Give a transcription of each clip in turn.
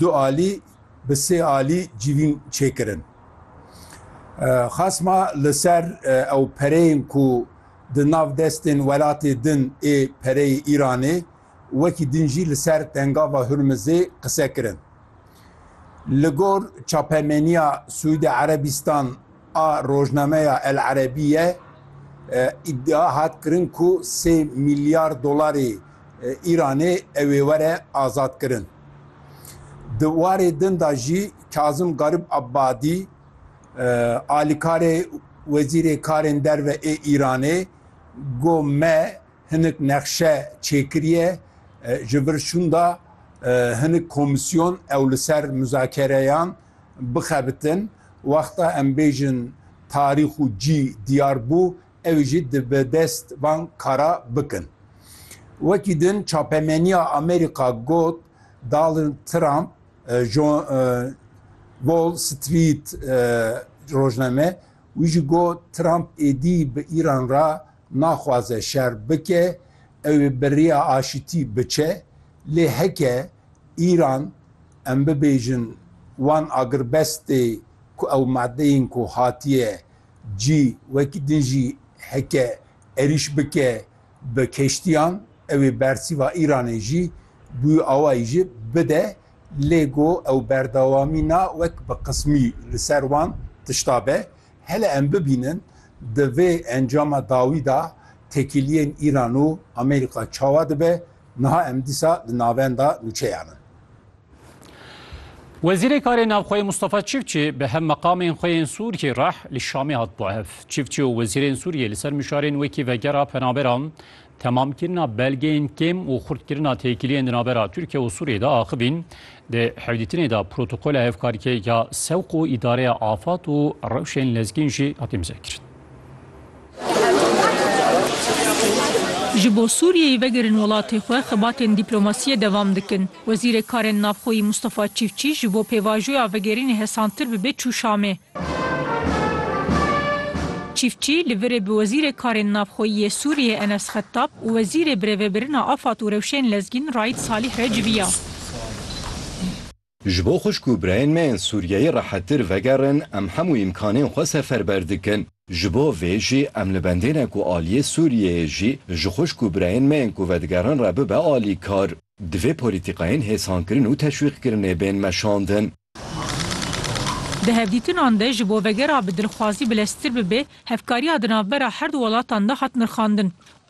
Du alî bi sê alî civîn çêkirin. Xasma li ser ew pereyên ku di nav destên welatê din ê pereyê Îranê wekî din jî li ser tengava Hurmizê qise kirin. Li gor çapemeniya Sûîde Erebîstan A rojnameya El Erebîye îdia hat kirin ku sê mîlyar dolarê Îranê ew ê were azadkirin. Di warê din de jî Kazim Garib Abadî, alîkarê Wezîrê Karên Derve ê Îranê got me hinik nexşe çêkiriye ji vir şûnda hinik komîsyon ew li ser muzakereyan bixebitin, wexta em bêjin tarîx û cî diyar bû, ew jî di bi dest van kara bikin. Wekî din çapemeniya Amerîka got, Donald Trump ji Wall Street rojname wî jî got, Trump êdî bi Îran re naxwaze şer bike, ew ê bi rêya aşitî biçe, Lê heke Îran em bibêjin wan agirbestê ku ew madeyên ku hatiye cî wekî din jî heke erîş bike bi keştiyan ew ê bersîva Îranê jî bûyî awayî jî bide lê go ew berdewamî na wek bi qismî li ser wan tişta be. Hele em bibînin di vê encama dawî da tekîliyên Îran û Amerîka çawa dibe Niha em dîsa di navenda nûçeyan in. Wezîrê Karê Navxweyê Mustafa Çiftçi bi hev meqamên xwe yên Sûriyê re li Şamê hat bo hev. Çiftçi û wezîrên Sûriyê li ser mişarên wekî vegera penaberan, temamkirina belgeyên kêm û xurtkirina têkiliyên di navbera Tirkiye û Sûriyê de axivîn. Di hevdîtinê de protokola hevkarkê ya Sewq û Îdareya Afat û rewşên lezgîn jî hat imzekirin. Ji bo Sûriyeyê vegerin welatê xwe, xebatên dîplomasiyê devam dikin. Wezîrê Karên Navxweyî Mûstafa Çîfçî ji bo pêvajoya vegerînê hesantir bibe çû Şamê. Çîfçî li virê bi Wezîrê Karên Navxweyî yê Sûriyeyê Enes Xettab û Wezîrê Birêvebirina Afad û Rewşên Lezgîn Raîd Salîh re civiya. Ji bo xwişk û birayên me ên Sûriyeyê rehettir vegerin em hemû îmkanên xwe seferber dikin. Ji bo vê jî em li bendêne ku aliyê Sûriyeyê jî ji xwişk û birayên me ên ku vedigerin re bibe alîkar. Divê polîtîkayên hêsankirin û teşwîqkirinê bên meşandin. Di hevdîtinan de ji bo vegera bi dilxwazî bileztir bibe, hevkariya di navbera her du welatan de hat nirxandin.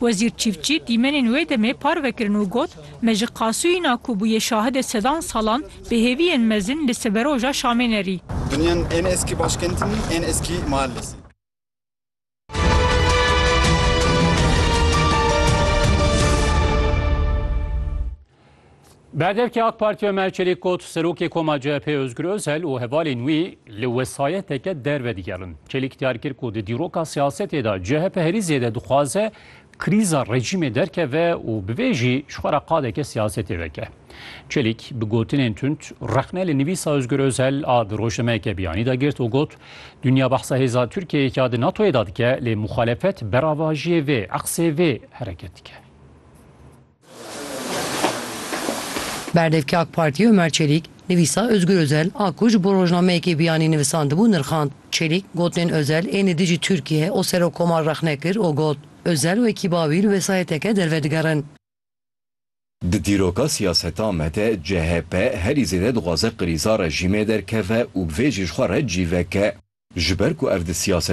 Wezîr Çîftçî dîmenên wê demê parve kirin û got, Me ji Qasûyîna ku bûye şahidê sedan salan, bi hêviyên mezin li siberoja Şamê nerî. Dünyan en eskî başkent nî, en eskî mahallesî. Berdevkê AK Partî Omer Çelîk got, Serokê Koma CHP'ê Ozgur Ozel û hevalên wî li wesayeteke derve digerin. Çelîk diyar kir ku di dîroka siyasetê de CHP herî zêde dixwaze krîza rejîmê derkeve û bi vê jî ji xwe re qadeke siyasetê veke. Çelîk bi gotinên tund rexne li nivîsa Ozgur Ozel a di rojnameyeke biyanî de girt û got, Dinya behsa hêza Tirkiyeyê ya di NATO'yê de dike lê muxalefet beravajiyê vê, eqsê vê hereket dike. Berdevkê AK Partiyê Omer Çelîk, nivîsa Ozgur Ozel a ku ji bo rojnameyekê biyanî nivisandibû nirxand. Çelîk, gotinên Ozel ên li dijî Tirkiyeyê û Serokkomar rexne kir û got, Ozel û ekîba wî li wesayeteke derve digerin. Di dîroka siyaseta me de chp herî zêde dixwaze krîza rejîmê derkeve û bi vê jî ji xwe re cî veke. Ji ber ku ev di siyaseta.